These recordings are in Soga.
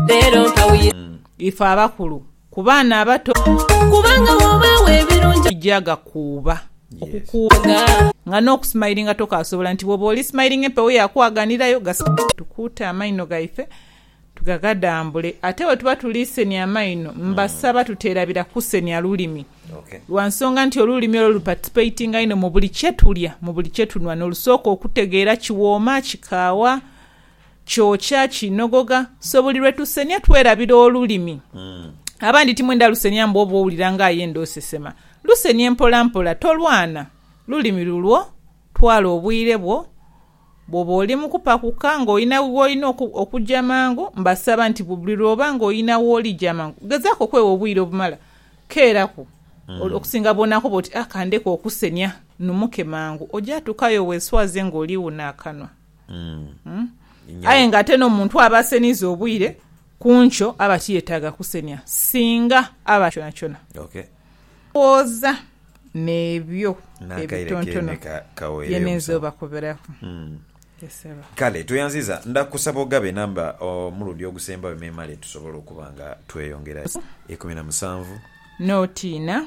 Leero nkawuyira. Ife abakulu ku baana abato. Kubanga w'obaawo ebirungi. Gya gakuuba. Okukuuba. Nga. Nga n'okusimayilinga tokaasobola nti bw'oba oli simayilinga empewo yaakwaganirayo gasigale. Tukuute amaino gaife tugagadambule. Ate bwe tuba tuli senia amaino, mbasaba tuteerabira kusenia lulimi. Lwa nsonga nti olulimi olwo luparticipatinga inho mu buli kye tulya, mu buli kye tunhwa, n'olusooka okutegeera kiwooma, kikaawa. Kyokya kinogogha. So buli lwe tusenia twerabira olulimi. Abandi timwenda lusenia mbu oba owulira nga ayenda osesema. Lusenie mpolampola, tolwana. Lulimi lulwo, twala obwire bwo. Bw'oba oli mu kupakuka ng'olina w'olina okugya mangu, mbasaba nti buli lw'oba ng'olina w'oli gya mangu. Gezaaku okwewa obwire obumala. Keeraku. Okusinga bw'onaakoba oti, a ka ndeke okusenia, nnumuke mangu, oja tuukayo weeswaze ng'oliwuna akanwa. Aye nga ate n'omuntu aba aseniiza obwire ku nkyo aba tiyetaaga kusenia singa aba kyonakyona. Ndhowooza n'ebyo ebitontono bye ninza obakoberaku. Ye Sebo. Kale tweyanziiza. Nda kusaba ogabe enamba omulundi ogusembayo memale tusobole okuba nga tweyongera. Ikumi na musanvu. N'otiina.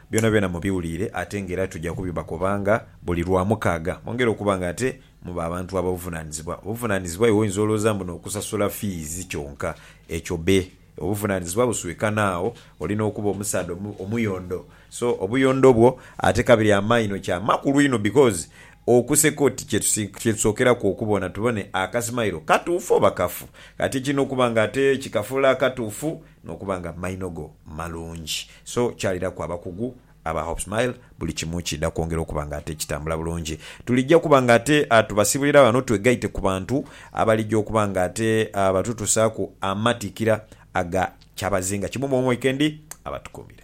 Byonabyona mubiwuliire ate nga era tuja kubibakobanga buli Lwamukaaga. Mwongere okuba nga ate muba abantu ab'obuvunaanizibwa. Obuvunaanizibwa iwe oyinza olwooza mbu n'okusasula fiizi kyonka. Ekyo be. Obuvunaanizibwa buswika n'agho. Oli n'okuba omusaadha omuyondo. So, obuyondo bwo ate kabiri amaino kya makulu inho because okuseka oti kye tusookeraku okubona tubone akasimailo katuufu oba kafu. Kati ekirina okuba nga ate kikafuula akatuufu Nokuba nga maino go malungi. So kyaliraku abakugu aba Hope Smile buli kimu kiidha kwongera okuba nga ate kitambula bulungi. Tulijja kuba nga ate tubasibulira ghano twegaite ku bantu abalijja okuba nga ate batutusaaku amatikira aga kyabazinga kimu mu omu weekend. Abatukuumire.